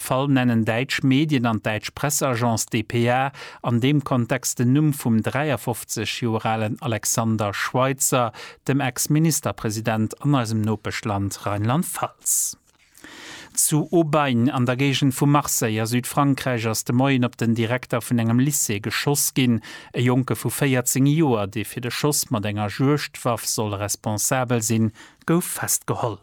Fall nennen däitsch Medien an d'däitsch Presseagence dpa an deem Kontext den Numm vum 53 Joer alen Alexander Schweitzer, dem Ex-Ministerpresident an eisem Nopeschland Rheinland-Pfalz. Zu Aubagne an der Géigend vu Marseille a Südfrankräich ass de Moien op den Direkter vun engem Lycée geschoss ginn. E Jonke vu 14 Joer, dee fir de Schoss mat enger Juegdwaff soll responsabel sinn, gouf festgeholl.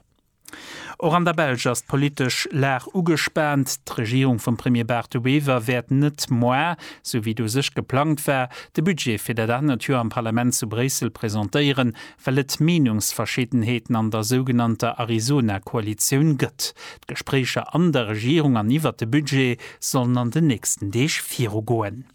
Och an der Belsch ass d'politesch Lag ugespaant. D'Regierung vum Premier Bart De Wever wäert net moar, esou wéi et u sech geplangt war, de Budget fir dat anert Joer am Parlament zu Bréissel presentéieren, well et Meenungsverschiddenheeten an der sougenannter Arizona-Koalitioun gëtt. D'Gespréicher an der Regierung an iwwert de Budget sollen an den nächsten Deeg virugoen.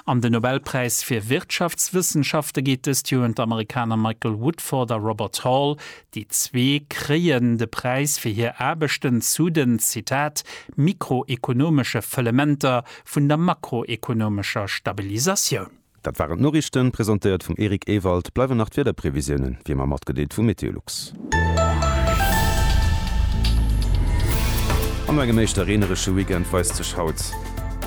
An den Nobelpräis fir Wirtschaftswëssenschafte geet dëst Joer un d'Amerikaner Michael Woodford a Robert Hall. Déi zwee kréien de Präis fir hir Aarbechten zu den, Zitat, mikroekonomesche Fëllementer vun der makroekonomescher Stabilisatioun. Dat waren d'Noriichten, presentéiert vum Eric Ewald. Bleiwen nach d'Wiederprevisiounen, wéi ëmmer, matgedeelt vum Meteolux. An no engem éischter reeneresche Weekend weist sech haut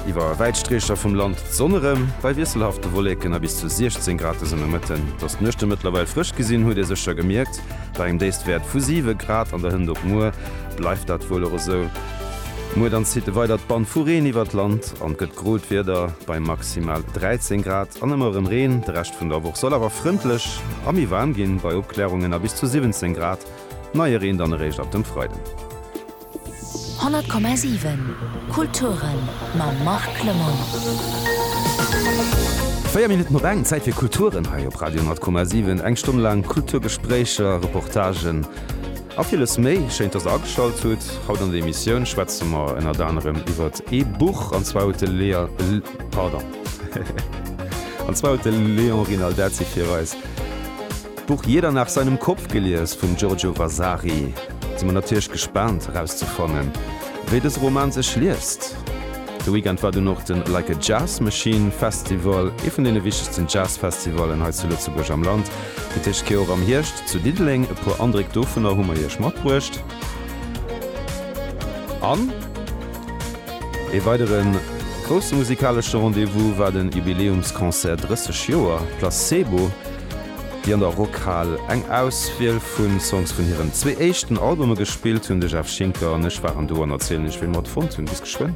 iwwer wäit Streecher vum Land d'Sonn erëm. Bei wiesselhafte Wolleken a bis zu 16 Grad ass ëmmer Mëtten. Dass d'Nuechte mëttlerweil frësch gi sinn, huet ee sécher gemierkt. Bei engem Déifstwäert vu 7 Grad an der Hënt op muer bleift dat wuel och esou. Muer dann zitt e weidert Band vu Reen iwwert d'Land an gëtt grot Wieder bei maximal 13 Grad an ëmmer erëm Reen. De Rescht vun der Woch soll awer frëndlech a méi waarm ginn, bei Opklärungen a bis zu 17 Grad. Neie Reen dann eréischt ab dem Freiden. 100,7 Kulturen mam Marc Lemon. Véier Minutten op eng, Zäit fir Kulturen hei op Radio 100,7. Eng Stonn laang Kulturgespréicher, Reportagen, A villes méi. Schéin, dass der ageschalt hutt. Haut an der Emissioun schwätze mer ënnert anerem iwwert ee Buch, an zwar huet de Lea, pardon, an zwar huet de Léon Rinaldazzi fir eis d'Buch Jeder nach seinem Kopf gelies vum Giorgio Vasari. Si mer natierlech gespaant erauszefannen, wéi dëse Roman sech liest. De Weekend war dunn och de Like a Jazz Machine Festival, ee vun deene wichtegsten Jazz-Festivallen hei zu Lëtzebuerg am Land. Fir d'éischt Kéier och am Hierscht zu Diddeleng. E puer Andréck dovunner hu mer iech matbruecht. An ee weidere grousse musikalesche Rendez-vous war de Jubiläumsconcert 30 Joer Placebo, déi an der Rockhal eng Auswiel vu Songs vun hiren zwee éischten Albume gespillt hunn. De Jeff Schinker an ech waren do an erzielen iech wéi mer et fonnt hunn. Bis geschwënn!